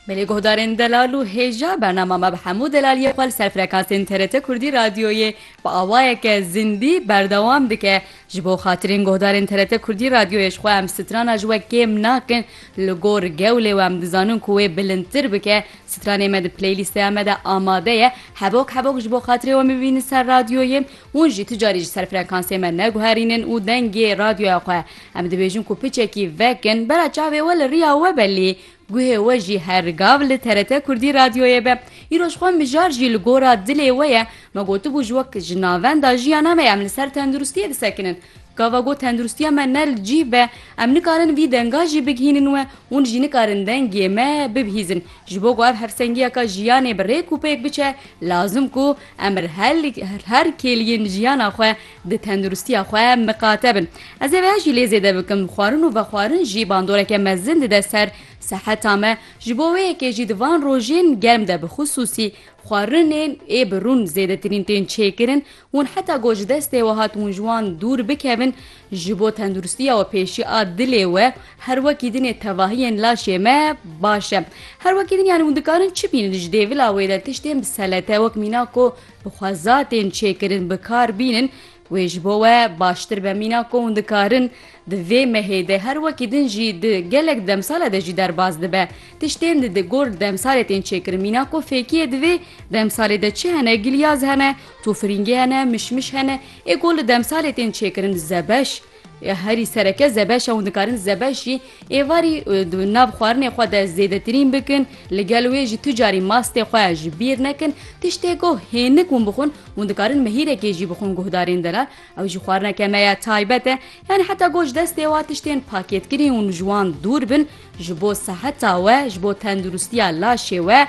Belê guhdarên delal û hêja bernama me bi hemû delaliyê xwe li ser frekasên TRT Kurdî Radyoyê bi awayeke zindî berdewam dike. Ji bo xatirên guhdarên TRT Kurdî Radyoyê ji xwe em strana ji we kêm nakin li gor gewlê û em dizanin ku wê bilindtir bike. Stranê me di playlîsteya me de amade ye. Hebok hebok ji bo xatirê we bivînin ser radyoyê. Hûn jî tu carî ji ser frekansê me neguherînin û dengê radyoya xwe Em dibêjin ku piçekî vekin bera çavê we li riya we be lê guhê we jî her gav li TRT Kurdî Radyoyê be. Îro ji xwe mijar jî li gora dilê we ye. Me gotibû ji wek ji navenda jiyana me ye em li ser tenduristiyê disekinin. Gava got tenduristiya me ne li cih be em nikarin vî denga jî bigihînin we hûn jî nikarin dengê me bibhîzin. Ji bo ku ev hevsengiyeka jiyanê bi rêk û pêk biçe lazim ku em li her kêliyên jiyana xwe Di tenduristiya xwe miqate bin. Ez ê vê jî lê zêde bikim. Xwarin û vexwarin jî bandoreke mezin dide ser seheta me. Ji bo wê yekê jî di van rojên germ de bi xisûsî xwarinên ê bi rûn zêdetirîn tên çêkirin. Hûn heta ku ji destê we hat hûn ji wan dûr bikevin. Ji bo tenduristiya we pêşî a dilê we her wekî din ê tevahiyên laşê me baş e. Her wekî din yanî hûn dikarin çi bînin ji dêvila wê de tiştên bi selete wek mîna ku Bi xweza tên çêkirin bi kar bînin wê ji bo we baştir be mîna ku hûn dikarin. Di vê mehê de her wekî din jî di gelek demsala de jî derbas dibe. Tiştên di di gor demsalê tên çêkirin mîna ku fêkiyê di vê demsalê de çi hene gilyaz hene, tûfirîngê hene, mişmiş hene ê ku li demsalê tên çêkirin zebeş, Herî sereke zebeş e û dikarin zebeş jî êvarî di nav xwarinê xwe de zêdetirîn bikin, li gel wê jî tu carî mastê xwe ji bîr nekin, tiştê ku hênik hûn bixwin hûn dikarin mehîrekê jî bixwin guhdarên delal, ew jî xwarineke me ya taybet e, yanî heta ku ji destê we tiştên pakêtkirî hûn ji wan dûr bin ji bo seheta we, ji bo tendirustiya laşê we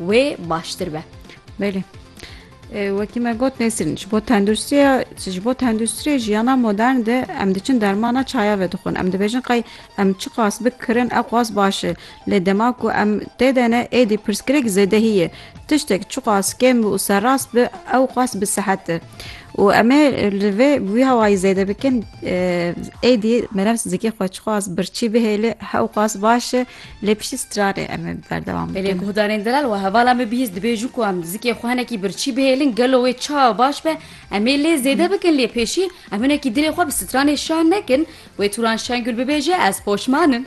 wê baştir be. Belê. Wekî me got Nesrîn ji bo tenduristiya ji bo tenduristiya jiyana modern de em diçin dermana çaya ve dixwin. Em dibêjin qey em çi qas bikirin ew qas baş e. Lê dema ku em tê de ne êdî pirsgirêk zêdehî ye. Tiştek çi qas kêm bi û serrast bi ew qas bi sihet e. û em ê li vê wî hewayî zêde bikin êdî meriv zikê xwe çi qas birçî bihêli hew qas baş e. Lê piştî strarê em ê bi berdewam bikin. Belê guhdarên delal û hevala me bihîst dibê jû ku em di zikê xwe hinekî birçî bihêlin gelo wê çawa baş be em ê lê zêde bikin lê pêşî em hinekî dilê xwe bi stranê şa nekin wê Turan Şengül bibêje ez poşman im.